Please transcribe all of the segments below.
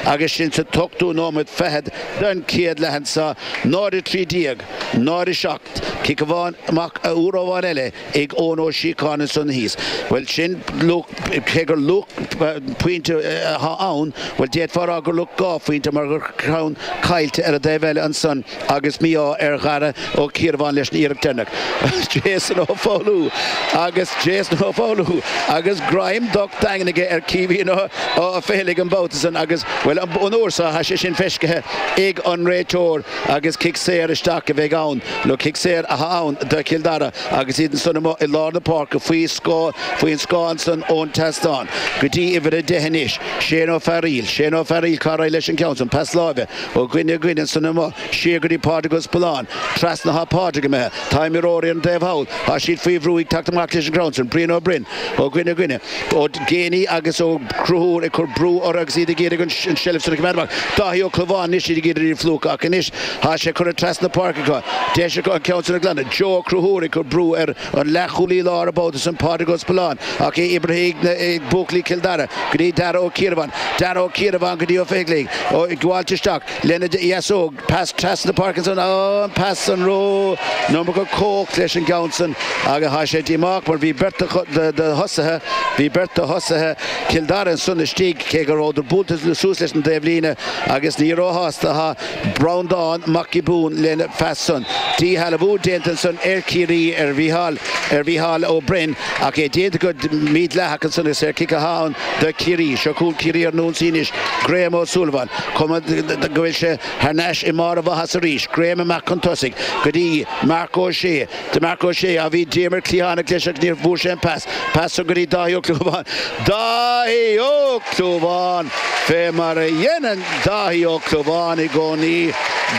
Agus sinn sa t-ochtú nóiméad fichead den chéad leath anseo, 0-13, 0-7, cic amháin amach, uair amháin eile ag Eoin Ó Síocháin ansan thíos, bhuel sin luach, cé gur luach pointe atá ann, bhuel d'fhéadfá a rá gur luach dhá phointe mar gur ceann caillte ar an dtaobh eile ansan. agus mí-ádh ar Dhara Ó Ciarabháin leis an iarracht deireanach. Jason Ó Foghlú agus Jason Ó Foghlú agus greim docht daingean aige ar Chaoimhín Ó Féithleigh an babhta san agus, bhuel, an uair seo, tá sé sin feiscithe ag an réiteoir agus cic saor isteach a bheidh ann nó cic saor atá ann do Chill Dara agus iad ansan amuigh i lár na páirce faoi faoin scáth ansan ón tseastán go dtí uimhir a deich anois, Shane Ó Fearaíl. Shane Ó Fearaíl, cá raibh leis an gceann san? Pas láimhe. Ó dhuine go duine ansan amach, siar go dtí Pádraig Ó Spealáin, trasna, tá Pádraig imithe, tá imreoirí ar an taobh thall, tá siad faoi bhrú, ag teacht amach leis an gceann san, Brian Ó Broin, ó dhuine go duine, Ó Géibheannaigh agus Ó Conchúir ag cur brú orthu agus iad ag iarraidh an seilbh sin a choimeád amach, Dáithí Ó Clúmháin anois, iad ag iarraidh iad a phlúchadh ach anois tá sé curtha trasna na páirce acu, deis acu an ceann sin a ghlanadh, Joe Ó Conchúir ag cur brú ar An leathchúlaí láir an babhta san Pádraig Ó Spealáin ach é oibrithe ag buachaillí Chill Dara go dtí Darragh Ó Ciarabháin, Darragh Ó Ciarabháin go dtí Ó Fithcheallaigh, ag gabháilt isteach lena dheasóg, pas trasna páirce ansan an pas san ró number cóch leis an gceann san agus tá sé díomách mar bhí beirt de thosaithe, bhí beirt de thosaithe Chill Dara ansan istigh cé go rabhadar buailte suas leis an dtaobh líne agus ní róshásta atá Breandán Mac Giobún lena phas-san. Díshealbhú déanta ansan ar Chiarraí ar Mhícheál ar Mhícheál Ó Broin ach é déanta go mídhleathach ansan agus saorchic atá ann do Chiarraí. Seo chugainn Ciarraí ar an ionsaí anois. Graham Ó Súilleabháin. Cuma go bhfuil sé thar n-ais i mbarr a mhaitheasa arís. Graham amach chun tosaigh go dtí Marc Ó Sé. Marc Ó Sé, a bhí Diarmuid Cliathánach leis ach ní bhfuair sé an pas. Pas san go dtí Dáithí Ó Clúmháin. Dáithí Ó Clúmháin! Fé mar a dheineann Dáithí Ó Clúmháin i gcónaí,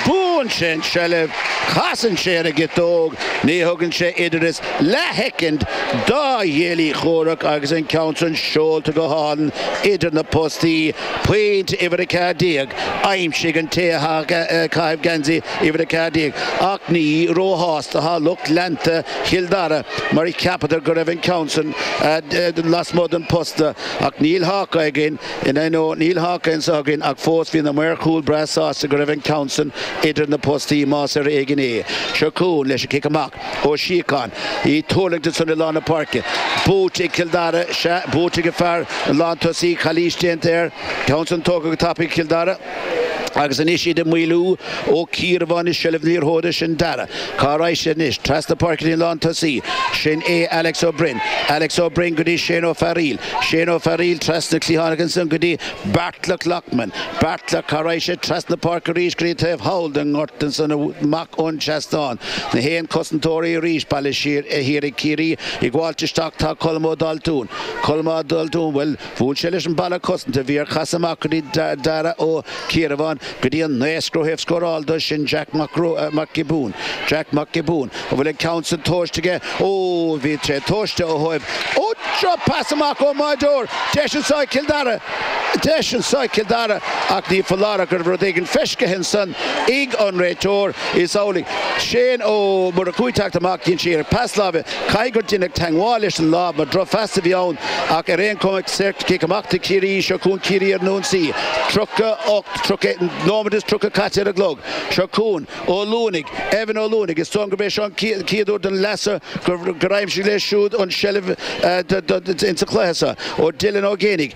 buann sé an tseilbh, casann sé ar an gciotóg, ní thugann sé oiread is leathshoicind dá chéile comhraic agus an ceann san seolta go hálainn idir na postaí. Pointe uimhir 14. Aimsithe ag an té atá ag caitheamh geansaí. Uimhir 14, Ach ní róshásta atá lucht leanta Chill Dara mar a cheapadar go raibh an ceann san lasmuigh den phost ach níl Hawk-Eye againn inniu nó níl Hawk-Eye anso againn ach fós bhí na maoir chúil breá sásta go raibh an ceann san idir na postaí más ar éigin é. Seo chugainn leis an gcic amach Ó Síocháin. Í tuirlingte ansan i lár na páirce. Buaite ag Cill Dara. Sea, buaite ag an fear, an lántosaí. Calaois déanta air. Ceann san tógtha go tapaidh ag Cill Dara. Agus anois iad ag maolú. Ó Ciarabháin i seilbh na liathróide, sin Dara. Cá raghaidh siad anois? Trasna páirce linn lán tosaí. Sin é Alex Ó Broin. Alex Ó Broin go dtí Shane Ó Fearaíl. Shane Ó Fearaíl trasna cliathánach ansan go dtí Beartla Loughman. Beartla, cá raghaidh sé? Trasna páirce arís go dtí taobh thall den ngort ansan amach ón seastán. Na haon cosantóirí arís bailithe siar thiar ag Ciarraí. Ag gabháilt isteach tá Colm Ó Daltún. Colm Ó Daltún, bhuel. Bhuail sé leis an balla cosanta a bhí air casadh amach go dtí Dara Ó Ciarabháin go dtí an naoscaire ó thaobh scóráil do. Sin Jack Mac Giobún. Jack Mac Giobún an bhfuil an ceann san tomhaiste aige. Ooh bhí sé tomhaiste ó thaobh. Ooh drochphas amach ón mbáideoir. Deis anseo ag Cill Dara. Deis anseo ag Cill Dara ach ní foláir go raibh rud éigin feiscithe ansan ag an réiteoir. Is amhlaidh. Shane Ó Murchú ag teacht amach. Dhein sé iarracht pas láimhe. Caithfidh gur deineadh teagmháil leis an lámh mar drochphas a bhí ann ach ar aon chuma ceart, cic amach do Chiarraí, seo chugainn Ciarraí ar an ionsaí, 38, trocha, nóiméad is tríocha caite ar an gclog. Seo chugainn Ó Luanaigh, Evan Ó Luanaigh, is dóigh gurb é seo an chéad uair don leath so gur aimsigh sé siúd an tseilbh insa chluiche seo ó Dylan Ó Géinigh.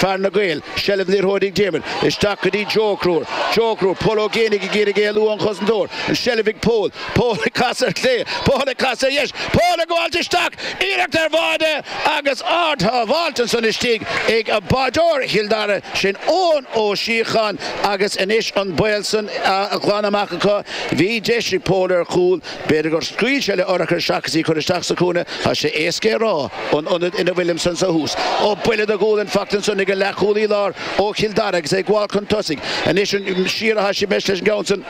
Fear na Gael, Seilbh na liathróide ag Diarmuid. Isteach go dtí Joe Ó Conchúir. Joe Ó Conchúir, Pól Ó Géinigh ag iarraidh éalú ón gcosantóir. An seilbh ag Pól. Pól ag casadh ar chlé. Pól ag casadh ar dheis. Pól ag gabháilt isteach. Iarracht ar bháide agus ard-shábháilt ansan istigh ag báideoir Chill Dara, sin Eoin Ó Síocháin agus anois an baol san á ghlanadh amach acu. Bhí deis ag Pól ar chúl. B'fhéidir gur scaoil sé le urchar seachas í chur isteach sa chúinne, tá sé éasca é a rá ón ionad ina bhfuilimse anso thuas. Ó buille do ghualainn faighte ansan ag an leath-chúlaí lár ó Chill Dara agus é ag gabháil chun tosaigh. Anois an siar a thoisigh mé leis an gceann san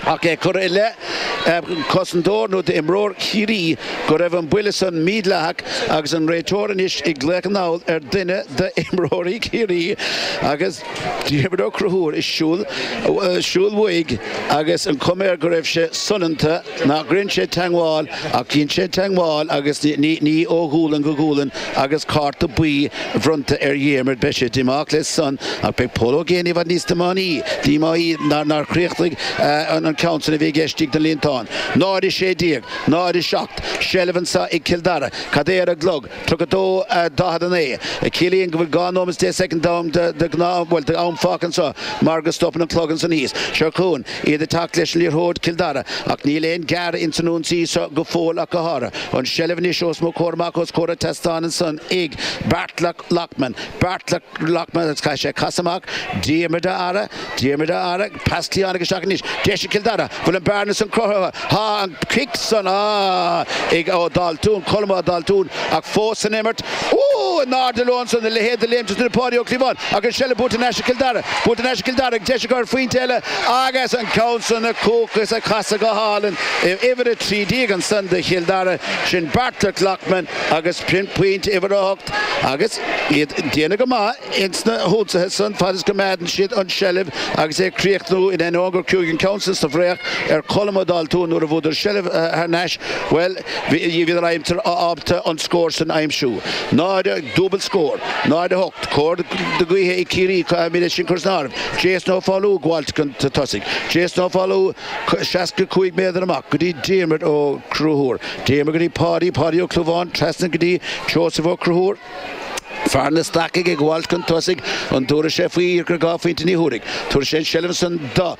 ach é curtha i leith cosantóir nó d'imreoir Chiarraí go raibh an buille san mídhleathach agus an réiteoir anois ag glaoch anall ar duine d'imreoirí Chiarraí agus Diarmuid Ó Conchúir is siúl siúl uaidh agus an chuma air go raibh sé soineanta, nár dhein sé teagmháil ach dhein sé teagmháil agus ní ó ghualainn go gualainn agus cárta buí bronnta ar Dhiarmuid. Beidh sé díomách leis san ach beidh Pól Ó Géinigh i bhfad níos díomáí nár chríochnaigh an ceann san a bhí aige istigh sa líontán. 0:16, 0:07 seilbh anseo ag Cill Dara. Cad é ar an gclog? 32:49 a chiallaíonn go bhfuil 2 nóiméad is 10 soicind d'am de ghnáth, bhuel, d'am fágtha anseo mar go stopann an clog ansin thíos. Seo chugainn iad ag teacht leis an liathróid, Cill Dara, ach níl aon ghearradh ins an ionsaí seo go fóill ach go háirithe. An seilbh anois os mo chomhair amach os comhair an tseastáin ansan ag Beartla Loughman. Beartla Loughman agus caithfidh sé casadh amach. Diarmuid á fhaire. Diarmuid Ó hEaghra, pas, cliathán, ag teacht isteach anois, deis ag Cill Dara, bhfuil an bearna san cruthaithe? Tá an cic san ag Ó Daltún, Colm Ó Daltún, ach fós san imirt. Úúú, in airde leo ansan, a leithéid de léim sa tine Páidí Ó Clúmháin, ach an seilbh buailte in aisce ag Cill Dara, buailte in aisce ag Cill Dara, deis ag cur pointe eile, agus an ceann san na Cúchulaigh ag casadh go hálainn uimhir 13 ansan do Chill Dara, sin Beartlet Loughman agus pointe uimhir 8 agus iad ag déanamh go maith. ins na hionsaithe san fad is go gcoimeádann siad an seilbh agus é ag críochnú in ainneoin gur cailleadh an ceann san sa bhreith ar Cholm Ó Daltúin nuair a bhuadar seilbh thar nais bhuel bhíodar ábalta an scór san aimsiú. 0, dúbailt scór. 0, 8, cóir na gaoithe ag Ciarraí caithfimid é sin a chur san áireamh. Jason Ó Foghlú ag gabháilt chun tosaigh. Jason Ó Foghlú seasca cúig méadar amach go dtí Diarmuid Ó Conchúir. Diarmuid go dtí Páidí. Páidí Ó Clúmháin trasna go dtí Seosamh Ó Conchúir. Fear na Stacach ag gabháil chun tosaigh, an dtabharfaidh sé faoi dhá phointe? Ní thabharfaidh. Tabharfaidh sé an seilbh san do,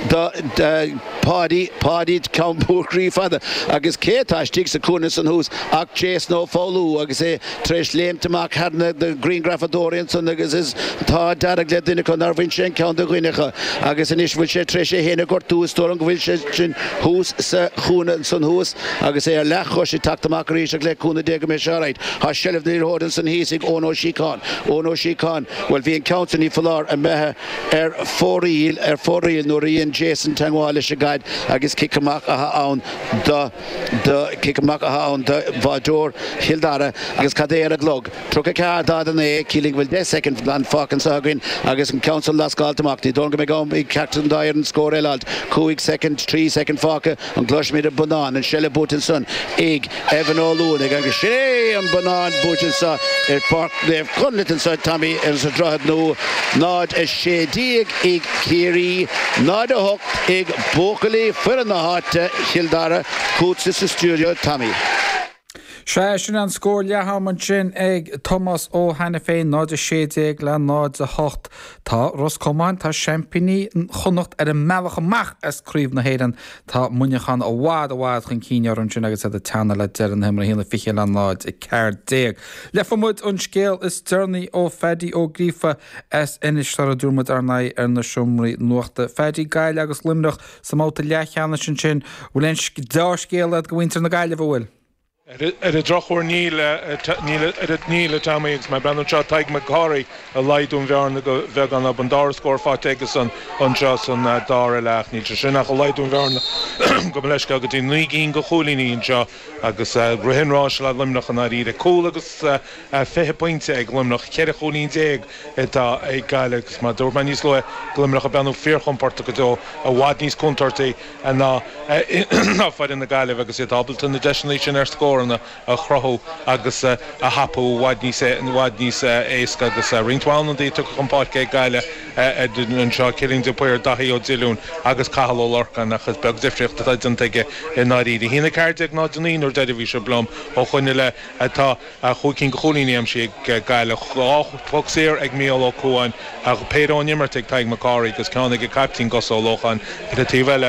do, do, Páidí, Páidí ceann mór cruaidh fada agus cé atá istigh sa cúinne san thuas ach Jason Ó Foghlú agus é tar éis léimt amach thar na grianghrafadóirí ansan agus stocaí dearga le duine acu nár bhain sé an ceann de dhuine acu agus anois bhfuil sé tar éis é féin a ghortú is dóigh liom go bhfuil sé sin thuas sa chúinne ansan thuas. Agus é ar leathchois, ag teacht amach arís ach le cúnamh Dé go mbeidh sé alright. Tá seilbh na liathróide ins an thíos ag Eoin Ó Síocháin. Eoin Ó Síocháin, bhuel, bhí an ceann sin, ní foláir, imithe ar fóraoil, ar fóraoil nuair a dhein Jason teagmháil leis an gcaid agus cic amach athá ann do, do, cic amach athá ann do bháireoir Chill Dara agus cad é ar an gclog? Tríocha a ceathair daichead a naoi, ciallaíonn go bhfuil deich soicind glan fágtha anso againn agus an ceann san leaisteáilte amach. Ní dóigh liom go mbeidh am ag ceachtar den dá fhoireann scór eile a fháilt. Cúig soicind, trí soicind fágtha. An gcloisfimid an bonnán, an seilbh buaite ansan ag Evan Ó Luanaigh agus sin é an bonnán buailte anseo ar Pháirc Naomh Conlaith anseo a Tommy ar an Droichead Nua, 0, 16 ag Ciarraí, 0, 8 ag buachaillí foireann na háite, Chill Dara. Chugatsa sa stiúideo a Tommy. Sea, sin an scór leath ama ansin ag Tomás Ó hAiniféin, 0 16 le 0, 8. Tá Ros Comáin, tá seaimpíní Chonnacht ar an mbealach amach as Craobh na hÉireann. Tá Muineachán i bhfad, i bhfad chun cinn orthu ansin agus iad ag teannadh le deireadh na himeartha, 1 20 le 0, 14. Gheobhaidh muid an scéal is deireanaí ó Phaddy Ó Gríofa as Inis, sula dtabharfaidh muid ár n-aghaidh ar na seomraí nuachta. Phaddy, Gaillimh agus Luimneach. sa mbabhta leath cheannais ansin. An bhfuil aon deá-scéala agat do mhuintir na Gaillimhe? An bhfuil. Ar an drochuair níl. Níl, a Tommy, agus má bhreathnaíonn anseo. Tadhg Mac Cárthaigh ag laghdú an bhearna go bheagán. An dara scór faighte aige-san anseo san dara leath ach níl sé sin ach ag laghdú an bhearna. Gabh mo leithscéal go dtí naoi gcinn de chúilíní anseo agus rith an ráis le Luimneach i ndáiríre. Cúl agus. Tá 20 pointe ag Luimneach, 14 chúilín atá ag Gaillimh agus mar a dúirt mé níos luaithe Luimneach ag breathnú fíorchompordach go deo, i bhfad níos contúirtí ná foireann na Gaillimhe agus iad ábalta na deiseanna sin ar scóranna a chruthú agus a thapú i bhfad níos éasca agus roinnt mhaith ionadaí tugtha chun páirce ag Gaillimh anseo, Cillian de Paor, Daithí Ó Dilliúin agus Cathal Ó Lorcáin ach is beag difríocht atá déanta acu i ndáiríre. Bhí sé 14 in aghaidh a 9 an uair dheiridh, a bhí sibh liom, ó shin i leith atá. Chúig cinn de chúilíní aimsithe ag Gaillimh, dhá phoc saor ag Mícheál Ó Cuáin, péire ón imirt ag Tadhg Mac Cárthaigh agus ceann ag a caiptín Gus Ó Lócháin. Ar an taobh eile,